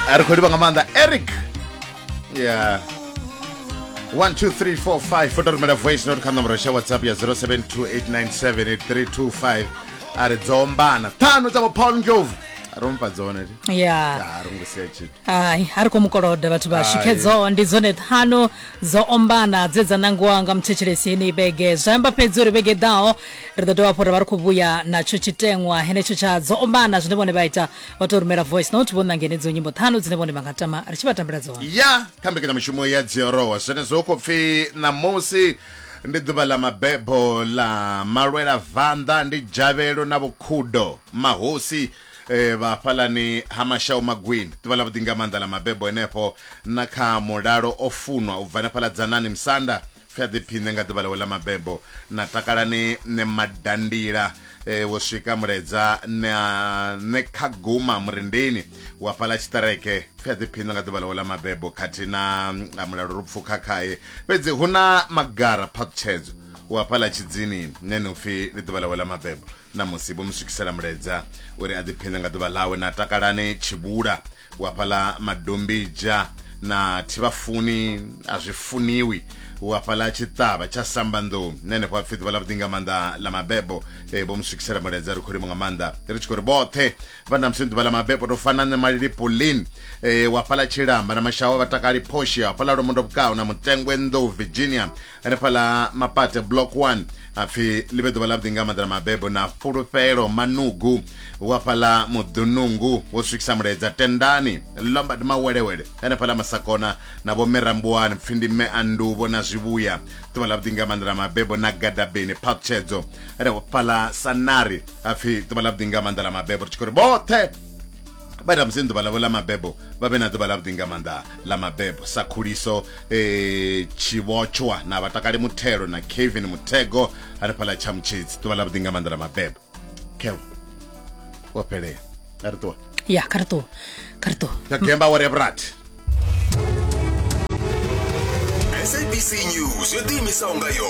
a ri khou livha nga maanḓa eric ya 12345 foto rumela voice note kha nomboro sha whatsapp ya 0728978325 a ri dzombana ṱhanu dza vho paul ndlovu a ro mufha dzone ti ya a ro ngo sia tshithu hayi a ri khou mukoloda vhathu vha Hai. shikhedzo ndi dzone ṱhanu dzo ombana dze dza nangiwa nga muthetshelesi yeneyi vhege zwa amba fhedzi uri vhege ḓaho ri ḓo dovha hafhu ra vha ri khou vhuya natsho tshiteṅwa henetsho tsha dzo ombana zwine vhone vha ita vha tou rumela voice note vho ṋanga henedzo nyimbo ṱhanu dzine vhone vha nga tama ri tshi vha tambela dzone ya kha mbekanyamushumo ya dziorowa zwenezwo hu khou pfi ṋamusi ndi ḓuvha ḽa mabebo ḽa malwela vanḓa ndi dzhavhelo na vhukhudo mahosi eh, vha hafhalani ha mashau magwini ḓuvha ḽa vhuḓi nga maanḓa ḽa mabebo henefho na kha mulalo o funwa u bva hanefhaḽa dzanani musanda Pfi a ḓiphiṋe nga ḓuvha ḽawe ḽa mabebo na takalani ne madandila e, eh, wo swika muledza ne a ne kha guma murindini wa fhala tshiṱereke pfi a ḓiphiṋe nga ḓuvha ḽawe ḽa mabebo khathihi na a mulalo ro pfukha khaye fhedzi hu na magara phaṱhutshedzo wa fhala tshidzini ne no pfi ḽi ḓuvha ḽawe ḽa mabebo na musi vho mu swikisela muledza uri a ḓiphiṋe nga ḓuvha ḽawe na takalani tshibula wa fhaḽa madombija na thivhafuni a zwi funiwi wa fhaḽa tshiṱavha tsha sambanḓou na henefho apfhi ḓuvha ḽa vhuḓi nga maanḓa ḽa mabebo e vho mu swikisela mulaedza ri khou limo nga maanḓa ri tshi khou ri vhoṱhe vha na musi ḓuvha ḽa mabebo to fana nṋe malili polin e wa fhaḽa tshilamba na mashawa vhatakali phoshi a fhaḽa lomondobukao na mutengwe nḓou virginia hanefhala mapate block 1 apfi ḽi vhe ḓuvha ḽavhuḓi nga maḓana mabebo na fulufhelo manugu wa fhaḽa muḓunungu wo swikisa muledza tendani lombard mawelewele hanefhala masakona na vho merambuwani pfi ndi mme anduvo na zwivhuya ḓuvha ḽavhuḓi nga maḓana mabebo na gadabeni phakutshedzo hanefhala sanari apfi ḓuvha ḽavhuḓi nga maḓana mabebo ri tshi khou ri vhoṱhe vha ita musi ḓuvha ḽavho ḽa mabebo vha vhe na ḓuvha ḽa vhuḓi nga maanḓa ḽa mabebo sa khuliso eh, tshivhotshwa na vhatakali muthelo na kevin muthego hanefhaḽa tshamutshedzi ḓuvha ḽa vhuḓi nga maanḓa ḽa mabebo kev wo fhelela a ri ṱuwa ya kha ri ṱuwa kha ri ṱuwa ya gemba wore ya vhurathi sabc news yo ḓiimisaho nga yone